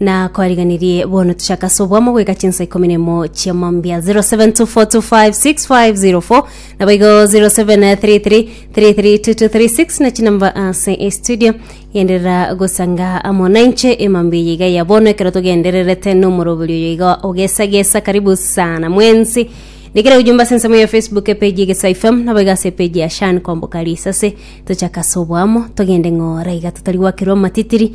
na kwariganirie bono tuchaka ase obwamo goika chinsa ikomi na emo chia mambia 0724256504 nabo igo 0733332236 na chinamba ase estudio genderera gosanga amo nainche emambia eye iga ya bono ekero togendererete nomorobori oyo iga ogesagesa karibu sana mwensi Ndikira ujumbe ase ensemo ya Facebook epeji egesa FM nabo iga ase epeji ya Shan Kwamboka Risase tochaka ase obwamo togende ng'ora iga totari gwakerwa amatitiri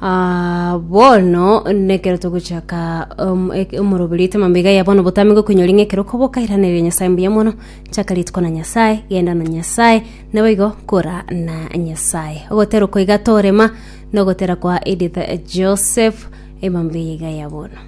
Ah, bono nekero togochaka um, ek- omoroberi oito mambega ya bono botame gokonyori ng'ekero koboka iranereria nyasaye mbuya mono chaka rituko na nyasaye genda na nyasaye naboigo kora na nyasaye ogotera koiga torema nogotera kwa edith joseph emambega ya bono